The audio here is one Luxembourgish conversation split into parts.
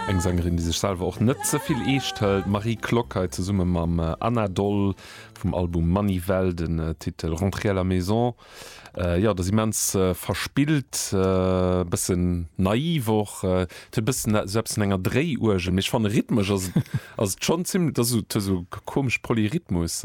Eng Sängerin, déi sech selwer och net ze vill eescht hëlt, d'Marie Klock hei zesumme mam Anna Doll vum Album Manivelle, den Titel Rentrer à la maison. Jo, et ass immens verspillt, e bësse naiv och, et huet e bëssen esou eppes vun enger Dréiuergel, mee ech fannen, rhythmesch ass et schonn zimmlech, dat ass esou komesch Polyrhythmus.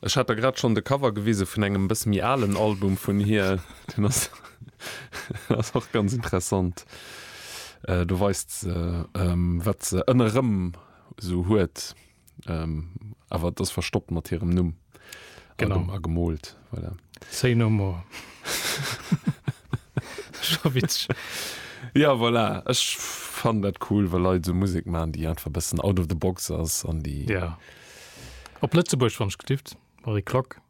Ech hat der grad schonn de Cover gewise vun engem e bësse méi alen Album vun hir. Deen ass ass och ganz interessant. Do weist se, wat se ënnerëm esou huet, awer et ass verstoppt mat hirem Numm a gemoolt. Voilà. Say no more. Scho witzeg. Jo, voilà. Ech fannen dat cool, wa Leit esou Musek maachen, déi einfach e bëssen out of the box ass an déi. Op Lëtzebuerg, wann ech getift, Marie Klock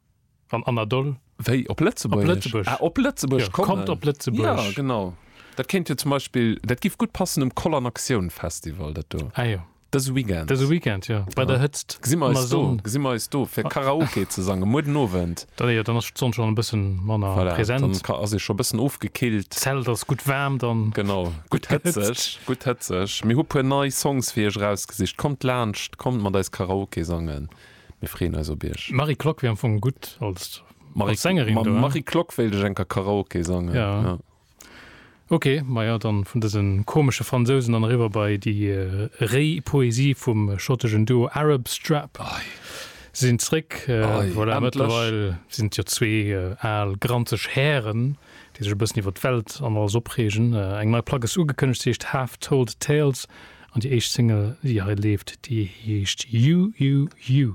an Anna Doll. Wéi? Op Lëtzebuerg? Op Lëtzebuerg. Ah, op Lëtzebuerg kommen. Jo, kommt op Lëtzebuerg. Jo, genau. Dat kéint jo zum Beispill, dat giff gutt passen um Koll an Aktioun Festival, dat do. Ah jo. Dëse Weekend. Dëse Weekend, jo. Bei der Hëtzt. Gesi mer eis do, gesi mer eis do fir Karaoke ze sangen, muer den Owend. Dann jo, dann ass d'Sonn schon e bëssen manner voilà, präsent. Dann ka, ass ee scho bëssen ofgekillt. D'Zelt ass gutt waarm dann. Genau, gutt hëtzeg, gutt hëtzeg. Mir hu puer nei Songs fir iech erausgesicht. Kommt laanscht, kommt mat eis Karaoke sangen. Mir freeën eis op iech. D'Marie Klock wär am Fong gutt als Sängerin. Mam Marie Klock wéilt ech eng Kéier Karaoke sangen. Ja. Ok, maja, dann vun dësen komesche Fransousen dann eriwwer bei déi réi Poesie vum schottegen Duo Arab Strap. Si sinn zréck, voilà, mëttlerweil sinn et jo zwee al granzeg Hären, déi sech e bëssen iwwer d'Welt an alles opreegen. Eng nei Plack ass ugekënnegt, se heescht Half Told Tales an déi éischt Single, déi hei leeft, déi heescht You, You, You.